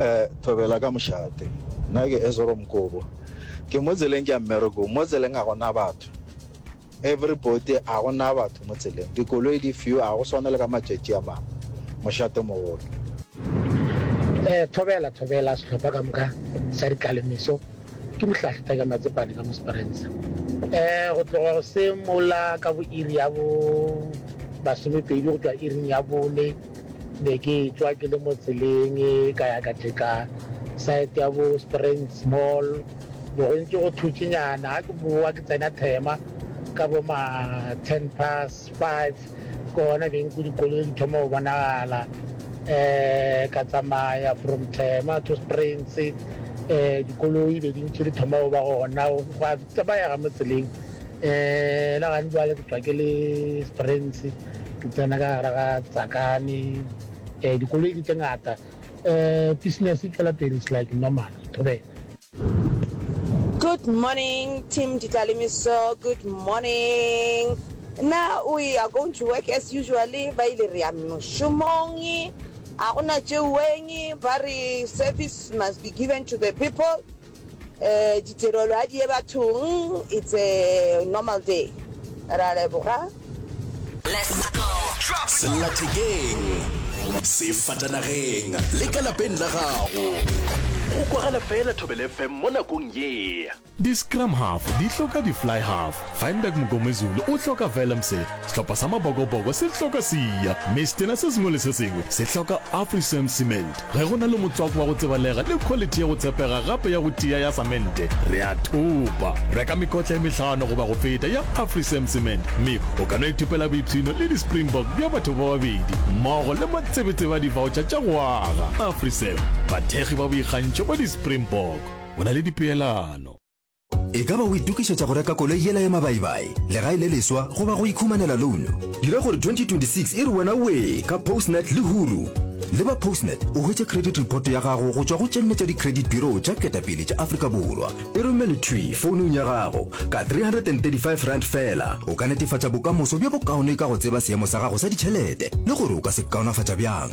Eh, thobela ka mošate nna ke ezoro mokobo ke mo tseleng ke ya mmereko mo tseleng ga gona batho everybody ga gona batho mo tseleng dikoloi di few ga go swane le ka matšatši a mangwe mošate mogolo eh thobela thobela sehlopha ka moka sa dikalemiso ke mohlahlita ka matsepane ka mosparensa eh go tloga go se mola ka bo iri ya bo masomepedi go tšwa iring ya bone Be ke tšwa ke le mo tseleng ka ya ka tšeka side ya bo Springs Mall, bo go ntše go thutšinyana. Ga ke bowa ke tsena Thema ka bo ma ten past five, ke gona beng ku dikoloi di thoma go bonagala. Ka tsamaya from Thema to Springs, dikoloi be di ntše di thoma go ba gona. Tse ba ya ga mo tseleng e la gane jwale ke tswa ke le springs ke tsena ka gara ga tsakane eh dikoloi di tse ngata eh business e tšwela pele it's like normal ke thobela. Good morning team Ditlaleimiso good morning na we are going to work as usually ba ile re ya mošomong a gona tšeuweng ba re service must be given to the people Ditirelo a di ye bathong, it's a normal day. Re a leboga. Sellathekeng, sefatanageng le ka lapeng la gago, go kwagala fela Thobela FM mo nakong ye. Di-scrum half di hloka di-fly half Feinberg Mngomezulu o hloka Velemseh, sehlopha sa Mabokoboko se hloka Siya, mme setena se sengwe le se sengwe se hloka Afrisan Cement. Ge go na le motswako wa go tsebalega le khwalithi ya go tshepega gape ya go tia ya samente, re a thopa. Reka mekotla e mehlano goba go feta ya Afrisan Cement, mme o ka no ithopela boipshino le di-Springbok bja batho ba babedi mmogo le matsebetsebe a divaotšha tša go aga. Afrisan, bathekgi ba boikgantšho ba di-Springbok. O na le dipeelano? E ka ba o itokišetša go reka koloi yela ya mabaibai, legae le leswa goba go ikhumanela louno? Dira gore 2026 e re wena wee ka Postnet le Huru! Le ba Postnet o hwetše credit report ya gago go tšwa go tše nne tša di-credit bureau tša ketapele tša Afrika Borwa. E romele thwi founung ya gago. Ka R335 feela o ka netefatša bokamoso bjo bokaone ka go tseba seemo sa gago sa ditšhelete le gore o ka se kaonafatša bjang.